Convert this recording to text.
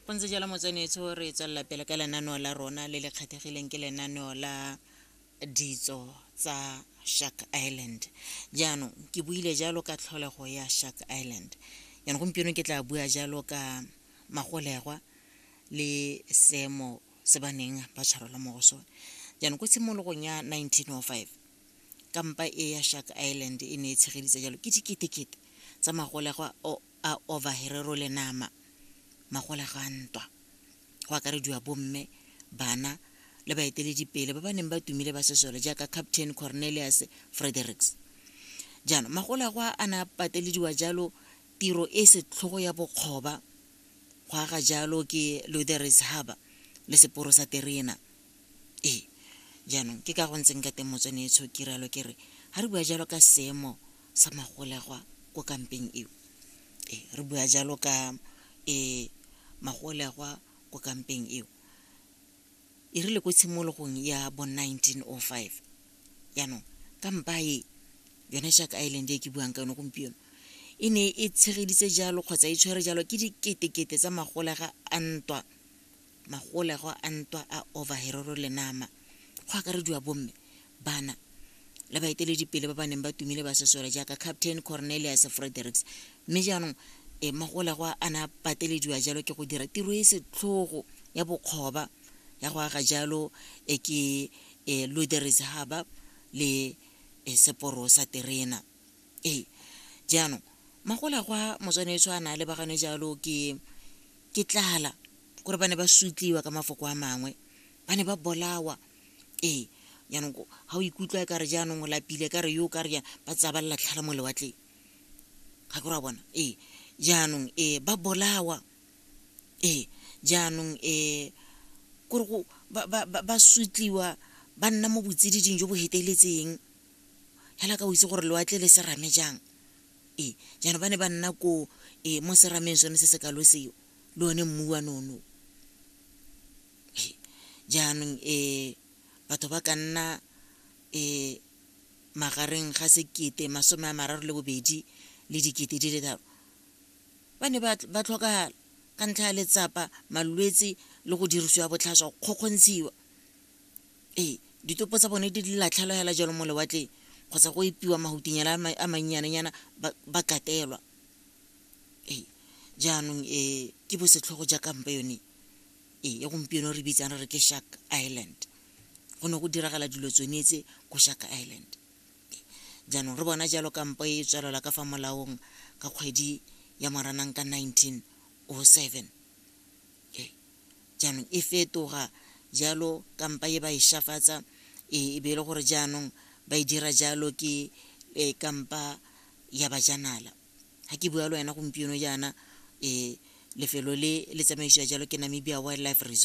go ntse jalo motsenetso re tswelela pele ka lenaneo la rona le le kgethegileng ke lenaneo la ditso tsa shark island jaanong ke buile jalo ka tlholego ya shark island jaanong gompieno ke tla bua jalo ka magolegwa le seemo se ba neng ba tshwarelwa mo go sone jaanong ko tshimologong ya 1905 kampa e ya shark island e ne e tshegeditse jalo ke diketekete tsa magolegwa a ovaherero le nama, magolega a ntwa, go akarediwa bomme, bana le baeteledipele ba ba neng ba tumile ba sesole jaaka Captain Cornelius Fredericks. Jaanong magolegwa a ne a patelediwa jalo tiro e setlhogo ya bokgoba go aga jalo ke Lutheris Harbour le seporo sa terena. Ee, jaanong ke ka go ntseng ka teng motswane e tshokiralo ke re ga re bua jalo ka seemo sa magolegwa ko kampeng eo e re bua jalo ka e magolegwa ko kampeng eo e rile ko tshimologong ya bo 1905 jaanong kampa e yone jack island e ke buang ka yone gompieno e ne e tshegeditse jalo kgotsa e tshwere jalo ke diketekete tsa magolega a ntwa magolego a ntwa a Ovaherero le Nama, go akarediwa bomme, bana le baeteledipele ba ba neng ba tumile ba sesole jaaka Captain Cornelius Fredericks, mme jaanong e, magolego a a ne a patelediwa jalo ke go dira tiro e setlhogo ya bokgoba ya go aga jalo e ke e Luderis Harbour le e seporo sa terena. Ee, jaanong magolagwa motswanetso a na a lebagane jalo ke ke tlala kore ba ne ba sutliwa ka mafoko a mangwe ba ne ba bolawa ee jaanong ga o ikutlwa e kare jaanong o lapile ka re yo o ka re ba tsaya ba lelatlhala mo lewatleng ga ke ra bona ee jaanong ee ba bolawa ee jaanong ee kore go ba sutliwa ba nna mo botsididing jo bo feteletseng fela ka o itse gore lewatle le serame jang ee jaanong ba ne ba nna ko e mo serameng sone se se kalo seo le one mmu wa nono jaanong um batho ba ka nna um magareng ga sekete masome a mararo le bobedi le dikete di le tharo ba ne ba tlhokagala ka ntlha ya letsapa malwetse le go dirisiwa botlhaswa go kgokgontshiwa ee ditopo tsa bone di latlhelwa hela jalo mo lewatleng kgotsa go epiwa mahutinyana a mannyanenyana ba katelwa ee jaanong um ke bo setlhogo ja kampa yone ee ya gompieno re bitsang re re ke shark island go ne go diragala dilo tsone tse ko shark island jaanong re bona jalo kampo e tswelela ka fa molaong ka kgwedi ya moranang ka 1907 jaanong e fetoga jalo kampa e ba e shafatsa e, e be e le gore jaanong ba e dira jalo ke e, kampa ya bajanala ga ke bua le wena gompieno jaana e lefelo le le tsamaisiwa jalo ke namibia wildlife resort